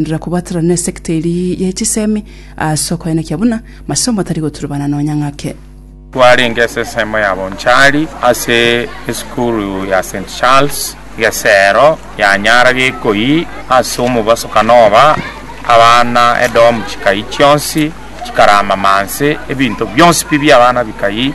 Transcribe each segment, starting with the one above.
Ndira kobaterana n'esegita eria ye chisemi ase okoenekia buna masomo atari goturubana nonya ng'ake. Twarenge ase ensemo ya Bonchari ase esukuru ya St. Charles, Gesero, Nyanyara, Gikoi. Ase omobaso Kanova abana edomu chikayia chionsi, chikaraama manse, ebinto bionsi pi bi'abana bikayia.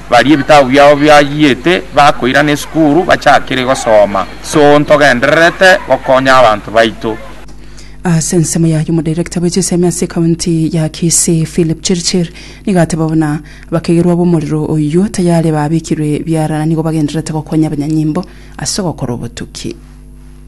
Baria ebitabu biabo biayiete bakoirana esukuru bachakire gosoma. So ntogendererete gokonya abanto baito. Ase ensemo yaye omodirector bwe chisemi ase ekaunti ya Kisii Philip Chirchir nigo ateba buna abakegerwa b'omorero oyio tayari babekirwe biara na nigo bagendererete gokonya abanyanyimbo ase ogokora obotuki.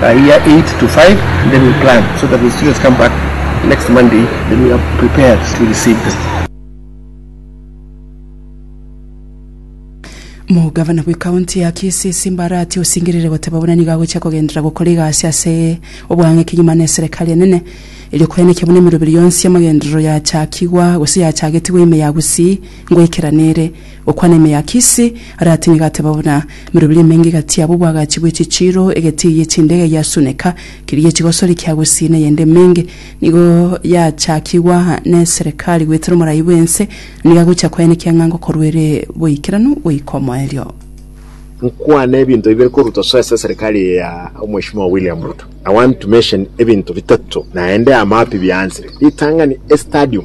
per year eight to five and then we plan so that when students come back next Monday then we are prepared to receive the Omogavana bwe county ya Kisii Simba Arati osingerire goteba buna nigo agochia kogenderera gokora egasi ase obwang'eki nyuma na eserekari enene erio koenekia buna emeroberi yonsi y'amagenderero yachakigwa gose yachagetigwa ime ya Gusii ngoikera nere Gokwana ime ya Kisi, aratinye gateba buna mirobiri emenge gati yabo obwagachi bwe chichiiro, egeti eye chinde gagiasuneka, keria chigosori kia gusii neyende emenge. Nigo yachakigwa neserekari goetera omorai bwense, nigo agochia koenekia ng'a ngokorwa ere boikeranu goika omoerio. Nkwane ebinto bibere koruta soesa eserekari eye ya Omweshimiwa William Ruto. I want to mention ebinto bitato naende amapi biaanzire ritang'ani estadium.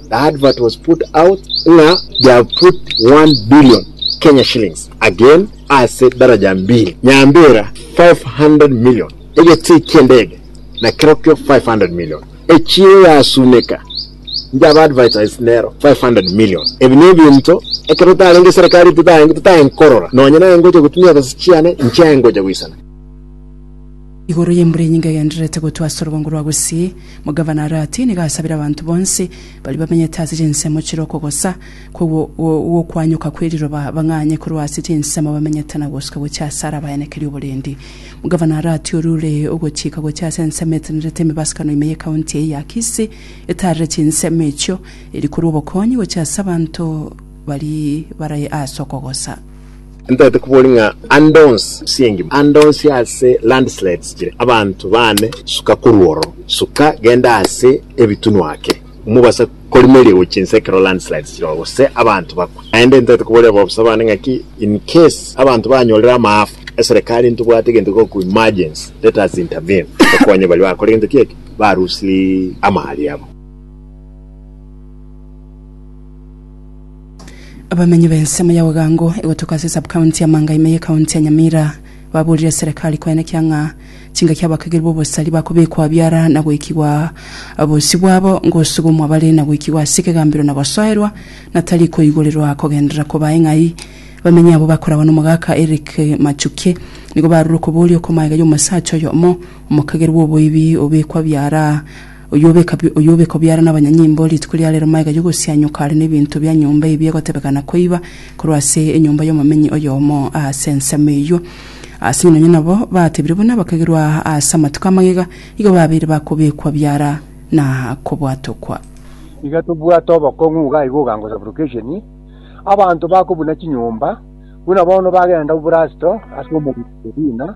The advert was put out ng'a they have put 1 billion Kenya shillings again ase daraja mbili nyambera 500 million egetii ki'endege na kerokio 500 million echiro yasuneka inche aba advertise nero 500 million ebi nebinto ekero tarenge eserekari totae totae nkorora nonye naye ngocha gotumia ebesa chiane inche aye ngocha goisana Igoro y'embura enyinge egendererete gotwa ase orobongo rwa gusii, Omogavana Arati nigo asabire abanto bonsi baria bamenyete ase chinsemo chire okogosa gw'okwanyoka kwe riroba bang'anye korwa ase chinsemo bamenyete na gosuka gochia ase ara abaenekerie oborendi. Omogavana Arati oria ore ogochika gochia ase ensemo etenerete emebasukano ime ye county eye ya Kisii etaarire chinsemo echio, eri korwa obokonyi gochia ase abanto baria bare ase okogosa. Ntaete koboria ng'a ande onsi ase engima, ande onsi ase landslides chire, abanto baane suka korwa oro, suka genda ase ebitunu ake, mobasa korimeria gochia inse ekero landslides chire gose abanto bakwe. Naende ntaete koboria abaobosa baane ng'aki in case abanto banyorire amaafa, eserekari ntibwate egento giko ku emergency, let us intervene tokonye baria bakore gento ki eke, barusirie amaha riabo. Abamenyi b'ensemo ya Ogango egotuko ase Sub-county ya Manga ime ye county ya Nyamira baburire serekari koenekea ng'a chingaki abakageri b'obosari bakobekwa biara na goikigwa bosio bwabo ngosugumwa bare na goikigwa ase ekegambero na gosoerwa na tari koigorerwa kogenderera kobae ng'ai. Abamenyi abwo bakoragwa n'omogaka Eric Machukie nigo barure okoboria okomaega y'omosacha oyomo omokageri bw'oboibi obekwa biara Oyobeka obiara nabanyanyimbo rituko ria rero magega yogosianyoka are nebinto bia nyomba ebi egotebekana koiba korwa ase enyomba yomomenyi oyomo ase ensemo eyio. Ase nonya nabo batebire buna bakagerwa ase amatuko a magega, igo babeire bakobekwa biara na kobwatokwa. Nigo tobwate obokong'u iga igo ogango sublocation, abanto bakobuna chinyomba buna bono bagenda Obrasto ase omorwoti Irina,